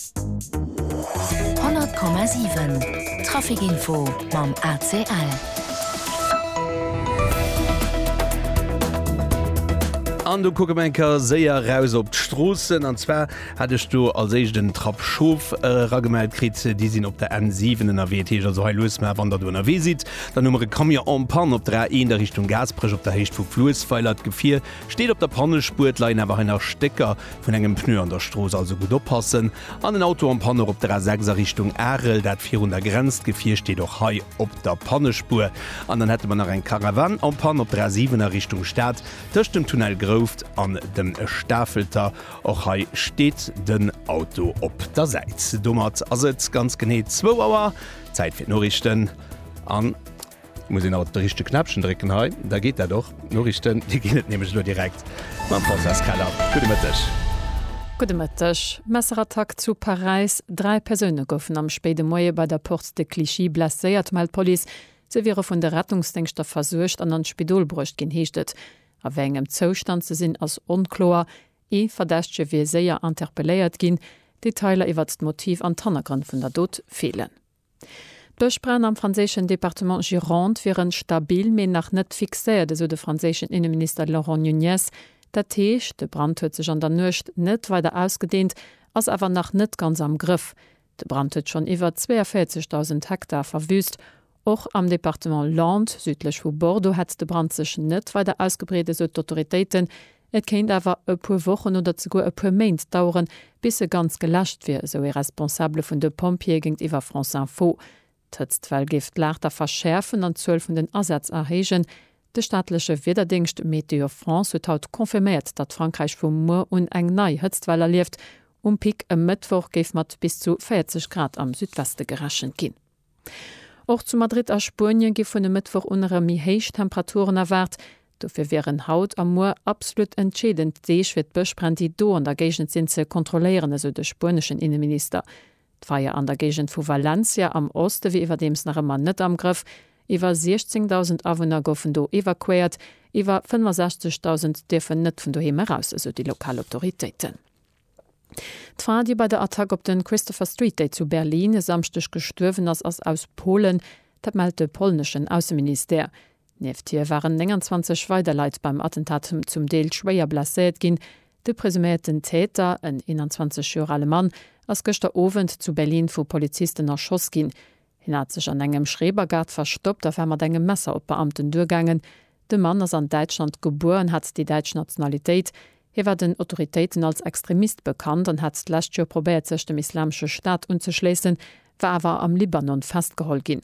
100,7 Trafic Info mam ACL. An do kucke mer eng Kéier séier eraus op d'Stroossen. An zwar hat ech do als éischt den Trapp Schof eragemellt äh, kritt. Déi sinn op der N7 ënnerwee. Teech also hei lues mar, wann der do ënnerwee sidd. Dann hu mer e Camion en panne op der A1 a Richtung Gasperech op der Héicht vu Fluessweiler. D'Gefier Steet op der Pannespuer, et leien awer hei nach Stécker vun engem Pneu an der Strooss, also gutt oppassen an den Auto am Panne. Och op der A6 a Richtung Arel, dat virun der Grenz, d'Gefier steet och hei op der Pannespuer. An dann hätte mer nach eng Caravane en panne op der A7 a Richtung Stad, tëscht dem Tunnel Grouft an dem Stafelter. Och hei steet den Auto op der Säit. Domat ass et ganz genee zwou Auer, Zäit fir d'Noriichten an. Muss een alt de richtege Knäppchen drécken hei, da geet dat och. D'Noriichten, déi ginn et nämlech elo direkt mam Françoise Keller. Gudde Mëtteg. Gudde Mëtteg. Messerattack zu Paräis, Dräi Persoune goufen am spéide Moie bei der Porte de Clichy blesséiert, mellt d'Police. Se wiere vun de Rettungsdéngschter versuergt an an d'Spidol bruecht ginn, heescht et. A wéi engem Zoustand se sinn, ass onkloer. Ee Verdächtege wier séier interpelléiert ginn. Detailer iwwert d'Motiv an d'Hannergrënn vun der Dot feelen. D'Bëschbränn am franséischen Departement Gironde wieren stabil, mee nach net fixéiert, esou de franséischen Inneminister Laurent Nunez. Dat heescht, de Brand huet sech an der Nuecht net weider ausgedeent, ass awer nach net ganz am Grëff. De Brand huet schonn iwwer 42.000 Hektar verwüüst. Och am Departement Landes, südlech vu Bordeaux, hätt de Brand sech net weider ausgebreet, esou d'Autoritéiten. Et kéint awer e puer Wochen oder zeguer e puer Méint daueren, bis se ganz geläscht wier, esou ee Responsabele vun de Pompjeeë géintiwwer France Info. D'Hëtztwell géif d'Laagter verschäerfen an d'Zuel vun den Asätz erhéijen. De staatleche Wiederdéngscht Météo France huet haut confirméiert, datt Frankräich vu muer un eng nei Hëtztwell erlieft. Um Pic e Mëttwoch géif mat bis zu 40 Grad am Südweste gerechent ginn. Och zu Madrid a Spuenie gi vun e Mëttwoch un erëm méi héich Temperaturen erwaart. Dofir wieren haut a muer absolut entscheedend Deeg fir d'Bëschbränn, déi do an der Géigend sinn, ze kontrolléieren, esou de spueneschen Inneminister. D'Feier an der Géigend vu Valencia am Oste wier iwwerdeems nach ëmmer net am Grëff. Iwwer 16.000 Awunner goufen do evakuéiert. Iwwer 65.000 dierfen net vun doheem eraus, esou déi lokal Autoritéiten. D'Fra, déi bei der Attack op de Christopher Street Day zu Berlin e Samschdeg gestuerwen ass, ass aus Polen. Dat mellt de polneschen Ausseministère. Nieft hir waren 29 weider Leit beim Attentat zum Deel schwéier blesséiert ginn. De presuméierten Täter, en 21 Joer ale Mann, ass gëschter Owend zu Berlin vu Polizisten erschoss ginn. Hien hat sech an engem Schrebergaart verstoppt a war mat engem Messer op d'Beamten duergaangen. De Mann ass an Däitschland gebuer an hat déi däitsch Nationalitéit. Hie war den Autoritéiten als Extremist bekannt an hat d'lescht Joer probéiert sech dem Islamesche Staat unzeschléissen, war awer am Libanon festgeholl ginn.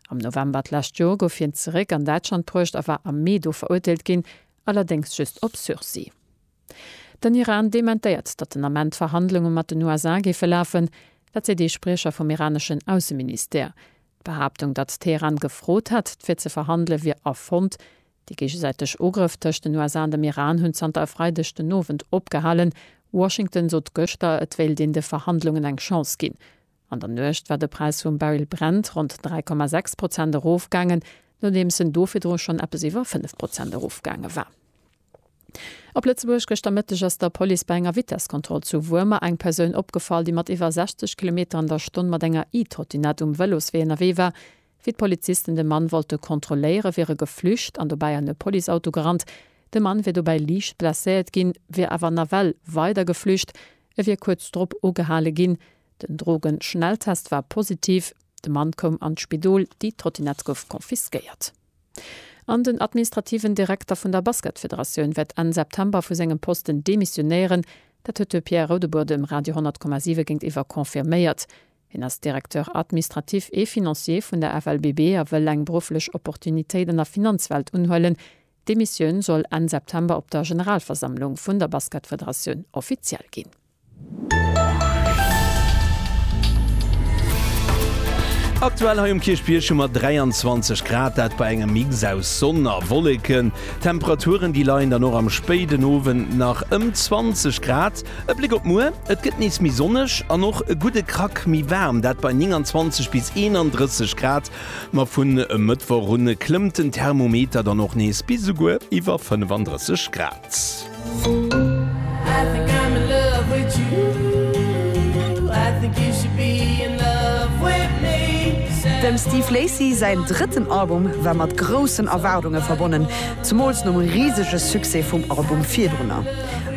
Am November d'lescht Joer gouf hien zeréck an Däitschland bruecht a war am Mee do verurteelt ginn, allerdéngs just op Sursis. Den Iran dementéiert, datt den Ament d'Verhandlunge mat den USA géife lafen. Dat seet ee Spriecher vum iraneschen Ausseministère. D'Behaaptung, datt Teheran gefrot hätt, fir ze verhandele wier erfonnt. Déi géigesäiteg Ugrëff tëscht den USA an dem Iran hunn zanter e Freideg den Owend opgehalen. Washington sot gëschter, et wéilt een de Verhandlungen eng Chance ginn. An der Nuecht war de Präis vum Barrel Brent ronn 3,6 Prozent erofgaangen, nodeems en do virdru schonn eppes iwwer 5 Prozent erofgaange war. Op Lëtzebuerg, Gëschter Mëtteg ass der Police bei enger Vitesskontroll zu Wuermer eng Persoun opgefall, déi mat iwwer 60 Kilometer an der Stonn mat enger E-Trottinett um Vëloswee ënnerwee war. Wéi d'Polizisten de Mann wollte kontrolléiere wier e geflücht an dobäi an e Policeauto gerannt. De Mann wier dobäi liicht blesséiert ginn, wier awer nawell weider geflücht. E wier kuerz drop ugehale ginn. Den Drogen-Schnelltest war positiv, de Mann koum an d'Spidol, déi Trottinett gouf confisquéiert. An den administrativen Direkter vun der Basketfederatioun wäert Enn September vu sengem Posten demissionéieren. Dat huet de Pierre Rodebuhr dem Radio 10,7 géintiwwer confirméiert. Hien ass Directeur admistratif et financier vun der FLBB a wëll eng berufflech Opportunitéit an der Finanzwelt unhuelen. D'Demissioun soll Enn September op der Generalversammlung vun der Basketfederatioun offiziell ginn. Aktuell hei um Kierchbierg hu mer 23 Grad, dat bei engem Mix aus Sonn a Wolleken. D'Temperaturen déi leien dann och am spéiden Owend nach ëm 20 Grad. E Bléck op muer, et gëtt nees méi sonneg an och e gudde Krack méi waarm, dat bei 29 bis 31 Grad. Ma vun e Mëttwoch un klëmmt den Thermometer dann och nees bis esouguer iwwer 35 Grad. Dem Steve Lacy säin drëtten Album war mat groussen Erwaardunge verbonnen, zemools nom risege Succès vum Album virdrunner.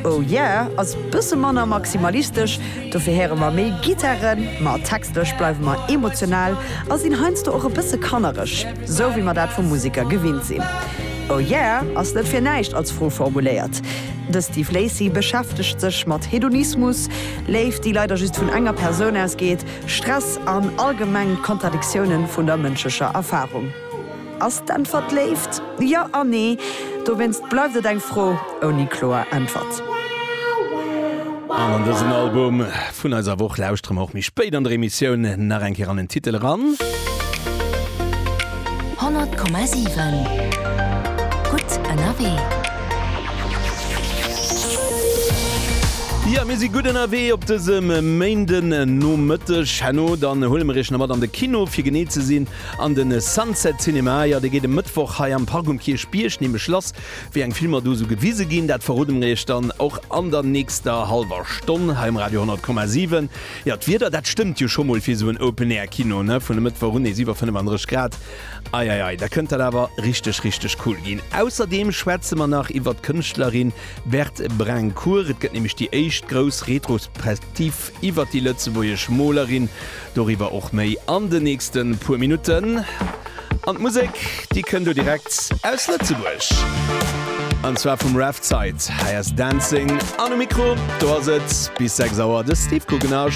Oh Yeah ass bësse manner maximalistesch, dofir héiere mer méi Gittaren, ma textlech bleiwe mer emotional a sinn heiansdo och e bësse kannereg. Sou wéi mer dat vu Museker gewinnt sinn. Oh yeah ass net fir näischt als Fro formuléiert. De Steve Lacy beschäftegt sech mat Hedonismus, Léift déi leider just vun enger Persoun ausgeet, Stress an allgemeng d'Kontradiktiounen vun der mënschlecher Erfarung. Ass d'Äntwert Léift? Jo an Nee. Dowéinst bleift et eng Fro. ouni kloer Äntwert. An an dësen Album vun eiser Woch lauschtere mer och méi spéit an der Emissioun nach eng Kéier an den Titel eran. 100,7 Gutt ënnerwee. Jo, mir si gutt ënnerwee op dësem Méindenomëtteg. Herno dann huele mer iech nach mat an de Kino, fir genee ze sinn an de Sunset Cinema. Jo, dee geet e Mëttwoch hei am Park um Kierchbierg nämlech lass. Wéi eng Filmer do esou gewise ginn, dat verrode mer iech dann och an der nächster hallwer Stonn hei um Radio 100,7. Jo, d'Wieder, dat stëmmt jo scho mol fir esou en Open Air Kino, ne? Vun e Mëttwoch un nees iwwer 35 Grad, ei ei ei, da kënnt dat awer richteg, richteg cool ginn. Ausserdeem schwätze mer nach iwwert d'Kënschtlerin Berthe Brincourt, et gëtt nämlech déi éischt grouss Retrospektiv. Iwwert déi lëtzebuergesch Molerin, doriwwer och méi an de nächste puer Minutten. An d'Musek, déi kënnt elo direkt aus Lëtzebuerg, an zwar vum Raf Zeit. Hei ass Dancing, an um Mikro do ass et bis 6 Auer de Steve Guggenarsch.